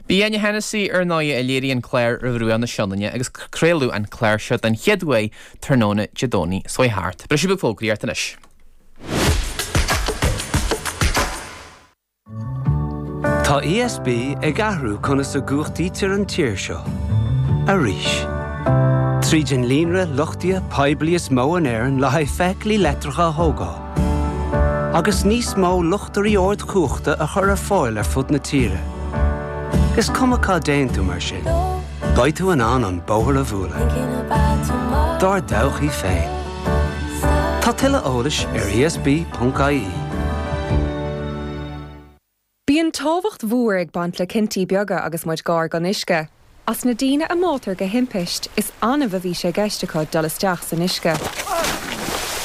Bhí Áine Hennessy ar an aoi a léirigh an clár Ar Bhruach na Sionainne agus craoladh an clár seo den chéad uair tráthnóna Dé Domhnaigh seo thart. Briseadh beag fógraí ann anois. Tá ESB ag athrú conas a chumhachtaítear an tír seo. Arís. Tríd an líonra luchtaithe poiblí is mó in Éirinn le haghaidh feithiclí leictreacha a thógáil, agus níos mó luchtairí ardchumhachta a chur ar fáil ar fud na tíre. Is cuma cá dtéann tú mar sin, beidh tú in ann an bóthar a bhualadh i dtreo dár dtodhchaí féin. Tá tuilleadh eolais ar esb.ie. Bíonn tábhacht mhór ag baint le cinntí beaga agus muid gár don uisce. As na daoine a mbáitear go himpisth, is annamh a bhí sé gceist acu dul isteach san uisce.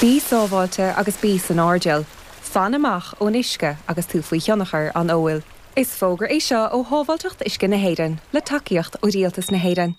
Bí sábháilte agus bí san airdeall. Fan amach ón uisce agus tú faoi thionchar an óil. Is fógra é seo ó Shábháilteacht Uisce na hÉireann, le tacaíocht ó Rialtas na hÉireann.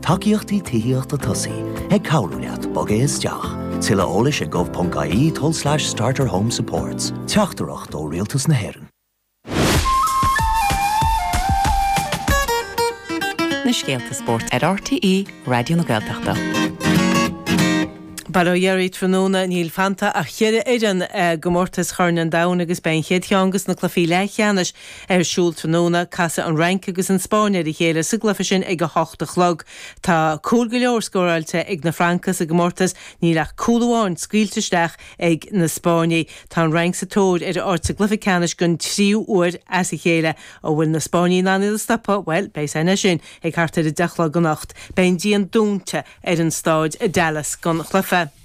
Tacaíochtaí Tithíochta Tosaigh ag cabhrú leat bogadh isteach. Tuilleadh eolais ag gov.ie told slash starterhomesupports. Teachtaireacht ó Rialtas na hÉireann. na scéalta spóirt ar RTÉ Raidió na Gaeltachta. Bhuel, ó dheireadh tráthnóna níl fanta ach cheithre fhoireann i gcomórtas Chorn an Domhain agus beidh an chéad cheann de na cluichí leathcheannais Ar siúl tráthnóna, casfaidh an Fhrainc agus an Spáinn ar a chéile sa gcluiche sin ag a hocht a chlog. Tá cúil go leor scóráilte ag na Francaigh sa gcomórtas, níl ach cúl amháin scaoilte isteach ag na Spáinnigh. Tá an Fhrainc sa tóir ar a áit sa gcluiche ceannais den tríú huair as a chéile. An bhfuil na Spáinnigh in ann iad a stopadh? Bhuel, beidh san ansin ag thart ar a deich a chlog anocht. Beidh an dian dúnta ar an stáid i Dallas don chluiche.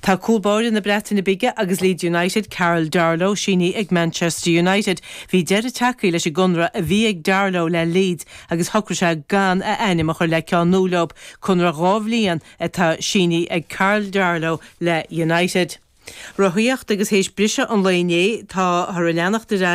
Tá cúl báire na Breataine Bige agus Leeds United, Karl Darlow, sínithe ag Manchester United. Bhí deireadh tagtha leis an gconradh a bhí ag Darlow le Leeds agus shocraigh sé gan a ainm a chur le ceann nua leo. Conradh dhá bhliain atá sínithe ag Karl Darlow le United. Rothaíocht, Agus théis briseadh an lae inné, tá, thar a leanacht ar aghaidh,